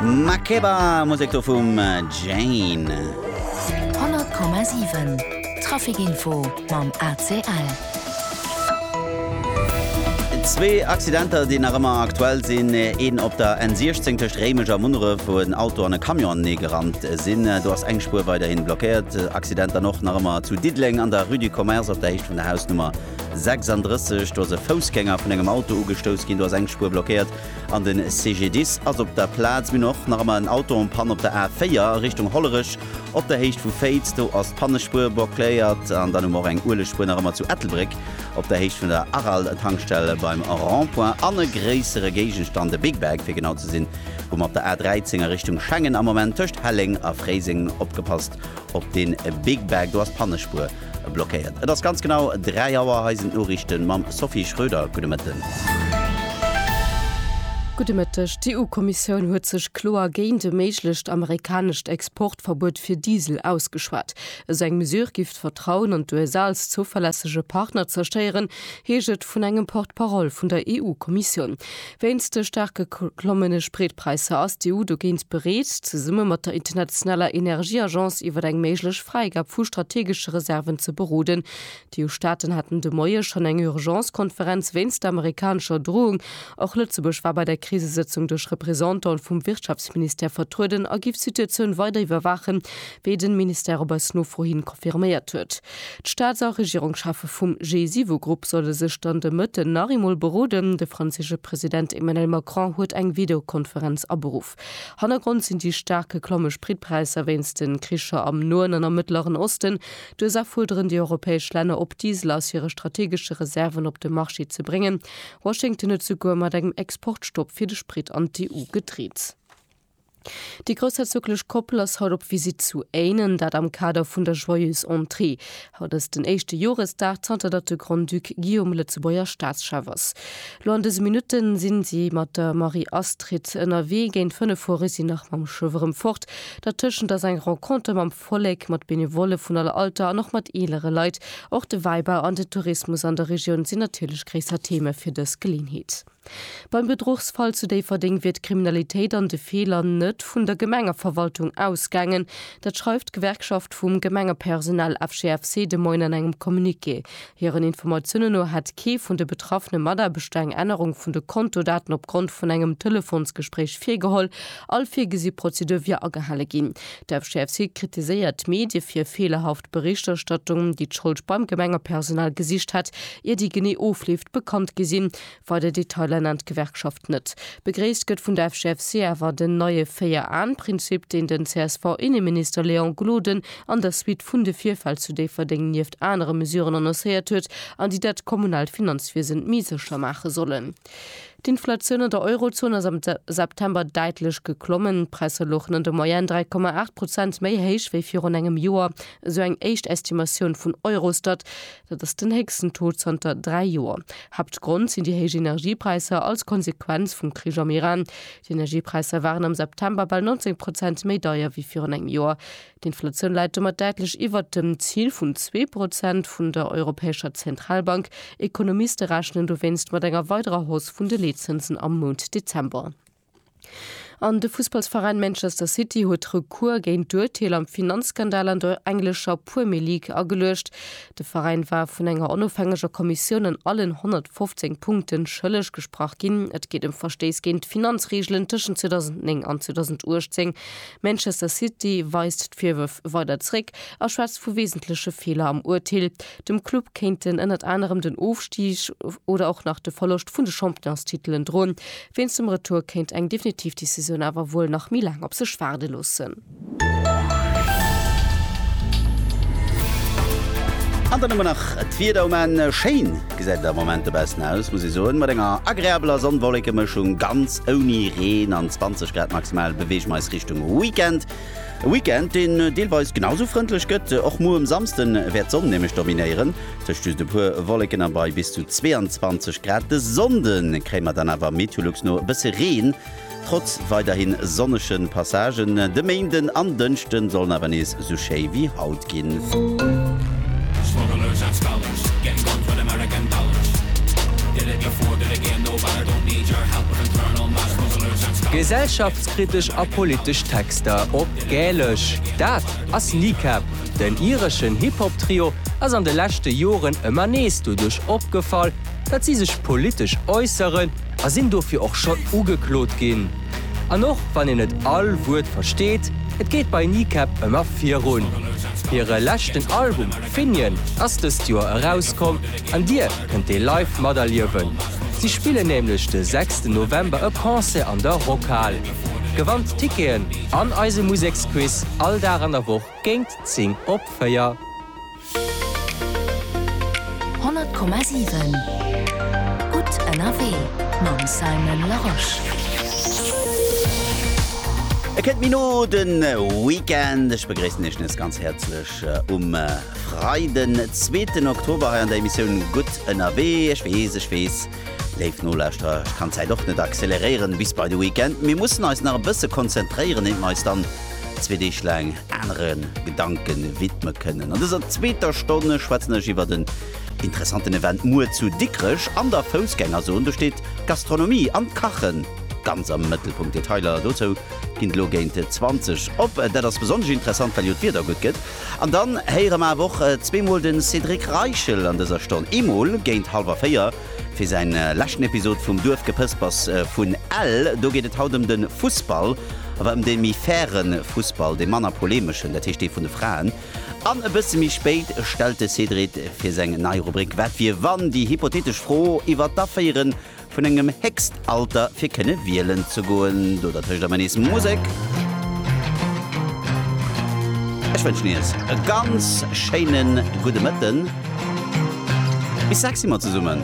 Makeba, Musek do vum Jane. 100,7 Trafikinfo mam ACL. Zwee Accidenter, déi nach ëmmer aktuell sinn. Een op der N16 tëscht Réimech a Munneref, wou en Auto an e Camion anenee gerannt sinn. Do ass eng Spuer weiderhi blockéiert. Accident dann och nach ëmmer zu Diddeleng an der Rue du Commerce op der Héicht vun der Hausnummer 36. Do ass e Foussgänger vun engem Auto ugestouss ginn. Do ass eng Spuer blockéiert. An den CGDIS ass op der Plaz. Mir hunn och nach ëmmer en Auto en panne op der A4 a Richtung Hollerech op der Héicht vu Féiz. Do ass d'Pannespuer bocléiert. An dann hu mer och eng Uelegspuer nach ëmmer zu Ettelbréck op der Héicht vun der Aral-Tankstell beim Rond-point. An e gréissere Géigenstand, e Big Bag fir genau ze sinn, hu mer op der A13 a Richtung Schengen am Moment tëscht Helleng a Fréiseng. Opgepasst op dee Big Bag, do ass d'Pannespuer. Blockéiert. Et ass ganz genau 3 Auer, hei sinn d'Noriichten mam Sophie Schröder. Gudde Mëtten. Gudde Mëtteg. D'EU-Kommissioun huet sech kloer géint e méiglecht amerikanescht Exportverbuet fir Diesel ausgeschwat. Esou eng Mesure giff d'Vertrauen an d'USA als zouverlässege Partner zerstéieren, heescht et vun engem Porte-parole vun der EU-Kommissioun. Wéinst de staarke klommende Spritpräisser ass d'EU dogéint bereet, zesumme mat der internationaler Energieagence iwwer eng méiglech Fräigab vu strategesche Reserven ze beroden. D'EU-Staaten haten de Moie schonn eng Urgence-Konferenz wéinst der amerikanescher Drohung. Och Lëtzebuerg war bei der Krisesëtzung duerch Représentantë vum Wirtschaftsministère vertrueden a giff d'Situatioun weider iwwerwaachen, wéi den Ministère op eis Nofro hin confirméiert huet. D'Staats a Regierungscheffe vum G7-Grupp solle sech dann de Mëtten nach eemol beroden. De franséische President Emmanuel Macron huet eng Videokonferenz aberuff. Hannergrond sinn déi staark geklomme Spritpräisser wéinst de Kricher am Noen an am Mëttleren Osten. D'USA fuerderen déi europäesch Länner op, Diesel aus hire strategesche Reserven op de Marché ze bréngen. Washington huet souguer mat engem Exportstopp fir de Sprit an d'EU gedreet. Déi groussherzoglech Koppel ass haut op Visitt zu Éinen, dat am Kader vun der Joyeuse Entrée. Haut ass den éischte Joresdag zanter datt de Grand-Duc Guillaume Lëtzebuerger Staatschef ass. Lo an dëse Minutte si si mat der Marie-Astrid ënnerwee. Géint 5 fuere si nach mam Schëff erëm fort. Dertëschent ass eng Renconter mam Vollek, mat Benevolle vun aller Alter an och mat eelere Leit. Och de Wäibau an den Tourismus an der Regioun sinn natierlech gréisser Theme fir dës Geleeënheet. Beim Bedruchsfall zu Déifferdeng wier d'Kriminalitéit an de Feeler net vun der Gemengeverwaltung ausgaangen. Dat schreift d'Gewerkschaft vum Gemengepersonal FGFC de Moien an engem Communiqué. Hiren Informatiounen no hätt kee vun de betraffene Mataarbechter eng Ännerung vun de Kontodaten opgrond vun engem Telefonsgespréich virgeholl. All virgesi Prozedur wier agehale ginn. De FGFC kritiséiert d'Medie fir feelerhaft Berichterstattung, déi d'Schold beim Gemengepersonal gesicht hätt, ier déi genee Ofleef bekannt gi sinn. Weider Detailer nennt d'Gewerkschaft net. Begréisst gëtt vun der FGFC awer den neie Véier-Aen-Prinzip, deen den CSV-Inneminister Léon Gloden an der Suite vun de Virfäll zu Déifferdeng nieft anere Mesuren annoncéiert huet an déi dat kommunaalt Finanzwiesen méi sécher maache sollen. D'Inflatioun an der Eurozon ass am September däitlech geklommen. D'Präisser louchen an der Moyenne 3,8 Prozent méi héich wéi virun engem Joer, esou eng éischt Estimatioun vun Eurostat. Dat ass den héchsten Taux zanter dräi Joer. Haaptgrond sinn déi héich Energiepräisser als Konsequenz vum Krich am Iran. Déi Energiepräisser waren am September bal 19 Prozent méi deier wéi virun engem Joer. D'Inflatioun läit domat däitlech iwwert dem Zil vun zwee Prozent vun der Europäescher Zentralbank. Ekonomiste rechnen dowéinst mat enger weiderer Hausse vun de Leetzënsen am Mount Dezember. An de Fussballsveräin Manchester City huet Recours géint d'Urteel am Finanzskandal an der englescher Puermir League ageluecht. De Veräin war vun enger onofhängeger Kommissioun an allen 115 Punkten schëlleg gesprach ginn. Et geet ëm Verstéiss géint d'Finanzreegelen tëschent 2009 an 2018. Manchester City weist d'Virwërf weider zeréck a schwätzt vu weesentleche Feeler am Urteel. Dem Club kéinten ënnert anerem den Ofstig oder och nach de Verloscht vun de Championstitelen droen. Wéinst dem Retour kéint eng definitiv Decisioun awer wuel nach méi laang op sech waarde loossen. An dann hu mer nach d'Wieder um Enn. Schéin gesäit et am Moment dobaussen aus, muss ee soen. Mat enger agreabeler Sonn-Wolleke-Mëschung, ganz ouni Reen an 20 Grad maximal, beweege mer eis Richtung Weekend. E Weekend, deen deelweis genau sou frëndlech gëtt. Och muer um Samsde wäert d'Sonn nämlech dominéieren, tëscht just e puer Wolleken a bei bis zu 22 Grad. De Sonnde kréie mer dann awer Meteolux no e bësse Reen, trotz weiderhi sonnege Passagen. De Méinden an Dënschde sollen awer nees sou schéi wéi haut ginn. Gesellschaftskritesch a politesch Texter op Gälesch, dat ass Kneecap. Den ireschen Hip-Hop-Trio ass an de leschte Joren ëmmer nees doduerch opgefall, datt si sech politesch äusseren a sinn dofir och schonn ugeklot ginn. An och wann een net all Wuert versteet, et geet bei Kneecap ëmmer virun. Hire leschten Album Finian ass dëst Joer erauskomm an Dir kënnt dee live materliewen. Si spillen nämlech de sechsten November e Concert an der Rockhal. Gewannt d'Ticketen an eise Museksquiz all Dag an der Woch géingt 10 op 4. Honnert Komma siwen Gutt ënnerwee mam Simon Larosche. Et kënnt méi no, de Weekend. Ech begréissen Iech nees ganz häerzlech um Freiden, zweeten Oktober hei an der Emissioun Gutt ënnerwee. Ech weess, ech weess, Léif Nolauschterer, ech kann d'Zäit och net acceleréieren bis bei de Weekend. Mir mussen eis nach e bësse konzentréieren, eent mer eis dann zwee Deeg laang anere Gedanke widme kënnen. An dëser zweeter Stonn schwätzen ech iwwert en interessanten Event muer zu Dikrech an der Foussgängerzon. Do steet d'Gastronomie an d'Kache ganz am Mëttelpunkt. Detailer dozou ginn elo géint 20 op. Dat ass besonnesch interessant, well jo d'Wieder gutt gëtt. An dann héiere mer awer och zweemol de Cédric Reichel an dëser Stonn. Eemol géint hallwer véier fir säi leschten Episod vum Duerfgepëspers vun Ell. Do geet et haut ëm de Fussball, awer ëm dee méi faire Fussball, dee manner polemeschen, dat heescht dee vun de Fraen. An e bësse méi spéit stellt de Cédrit fir seng nei Rubrik Wat wier wann? déi hypothetesch Fro iwwer d'Aféieren Vun engem Héchstalter fir kënne wielen ze goen. Do dertëscht emmer nees Musek. Ech wënschen iech e ganz schéine gudde Mëtten. Bis sechs si mer zesummen.